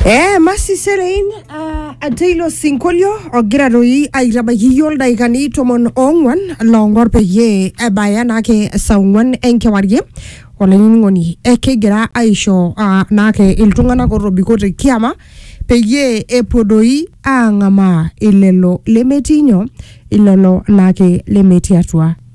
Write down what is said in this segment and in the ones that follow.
Eh, masi serein uh, ateilo sinkolio ogira doi aitabaiki iyio ildaikani tomon ong'uan loong'or peyie ebaya naake saa ong'uan enkewarie olainining'oni eh, kigira aisho uh, naake iltung'anak otobiko te kiama peyie epuo doi aang'amaa ilelo lemetii nyoo ilelo naake lemetii atua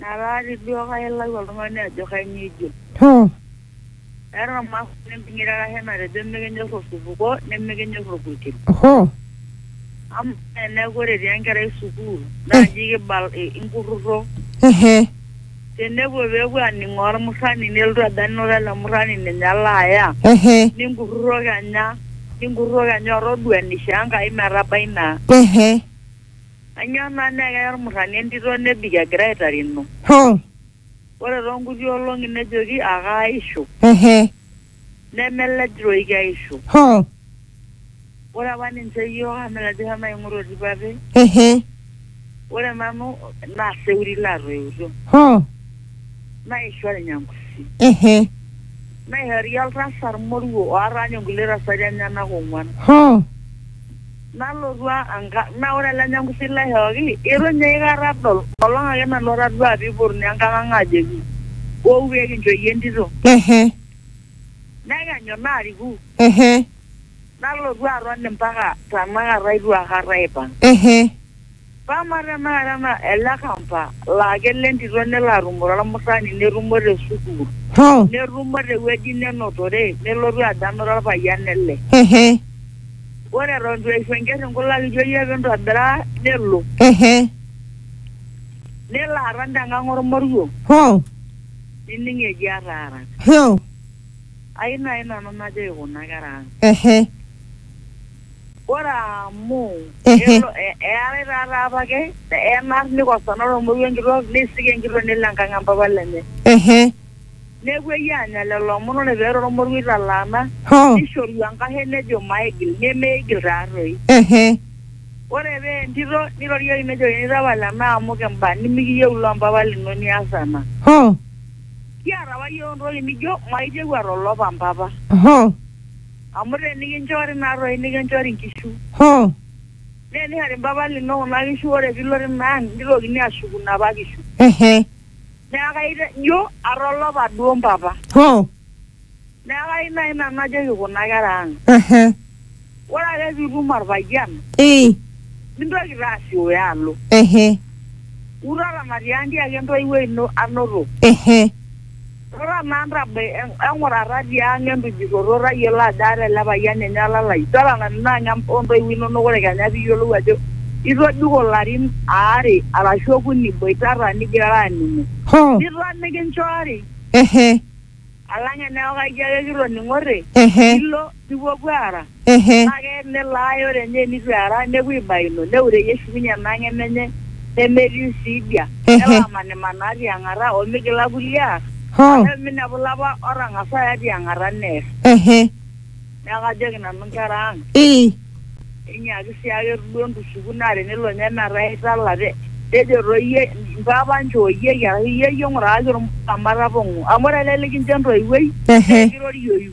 Naraati duo kake ilau oltung'ani ajo kainyoo ejo. Hoo! Eeta olmaasani empinyita arashu enatejo mikinyor osupuko nimikinyor olpurkel. Hoo! Amaa teneeku ore etii enkerai sukuul naa nji kibal inkurrurro. Hehe. Tenepuo peepuo aaning'oo olmurrani nelotu ajo anoto ele murrani ninye alo aya. Hehe. Ninkurrurro kenya ninkurrurro kenya otoduaa eneishoo Enkai metabai naa. Hehe. Anyor naa naa keya olmurrani entito nebik egira aitarino. Hoo! Ore too nkuti olong'i nejoki akaaisho. Ehe. Nemelej toi keisho. Hoo! Ore apa ninche iyiook amu mileja eshomo aing'ura oltipape. Ehe. Ore nanu naa seuri laatoiutuo. Hoo! Naisho olnyangusi. Ehe. Naishori oltasat moruo oata ninye nkulie tasati enyenak ong'uan. Hoo! Nalotu ankang naa ore ele nyangusi laishooki eitu ninye aikata adol. Enkolong ake nanu atadua pee eipotuni enkang ang aajoki wou pee kincho iyie entito. Ehe. Nekenyu naariku. Ehe. Nalotu aton mpaka tenakata eitu aikata aipang. Ehe. Pama tenakata na ele kampa laa kelo entito nelo arrumore olmurrani nerrumo te sukuul, Hoo. nerrumo te wueji nenotore nelotu adanu to lpayian nele. Hehe. Ore eton eitu eishu enkerr inkulak ijo iyie pee intobiraa nelo. Hehe. Nelo aton te ngang olmoruo. Hoo. Nining eji ataara. Hoo. Ai nai nanu najoki kuna kera ang. Hehe. Ore amu Ehe. elo- e- eetae taata apake enar nikosana olmoruo enkitok neisik enkitok nelo enkang empapa lenye. ehe Nepuoi aanya lelo omon ore pee eeta olmoruo italaana ho nishoru enkashe nejo maigil nemeigil taatoi. ehe Ore pee entito nirorieki nejokini tapala ena amu kimba nimikiyieu ilo mpapa lino nias ena. ho Kiata apa iyiook intokitin nijo maitieu atolop empapa. ho Amu te nikinchori naa toi nikinchori nkishu. Hoo! Naa enihari mpapa lino kuna kishu ore pee ilo tina ang neitokini aashuku napa kishu. Ehe. Neaku aitejo atolopa duo mpapa. Hoo! Neaku ayieu naaji nanu najoki kuna kera ang. Ehe. Ore ake pee itum olpayian. Ii. Mintoki taa asioyo alo. Ehe. Utaramatie aa ntiaki entoiwuoi ino anoto. Ehe. Rura naa ntabai eng'urata ti ang entujurroto tayiolo ajo aata ele payian ninye olalai. Totona nanu ina ang o ntoiwuo inono ore kenya pee iyiolou ajo itobiko larin aare arashu okuni iboitata nigirara aaning'o. Hoo! Nito mikinchori. Ehe. Alang eneeku kajo ake kitoning'ote. Ehe. Nilo. Nipuopuo aara. Ehe. Kake nelo ae ore ninye enitu eara, nepuo aibaino, neure Yesu ninye ina ng'eno enye nemetiu sii dia. Ehe. Nelo amanimanaa ti ang'ata o migila kulie aar, Hoo. amu eminepu ilapa otang'asa aaya ti ang'ata neer. Ehe. Neaku ajoki nanu nkera ang'. Ii. Enyaaki sii ake duo ntushuku naa tenelo ninye metaa itala te tejo toi iyie mpapa nchooyieki arashu iyie iyie ng'uraaki olmutama tapong'o. Amu ore ele likincho entoiwuoi Ehe. naa ekirorioyu.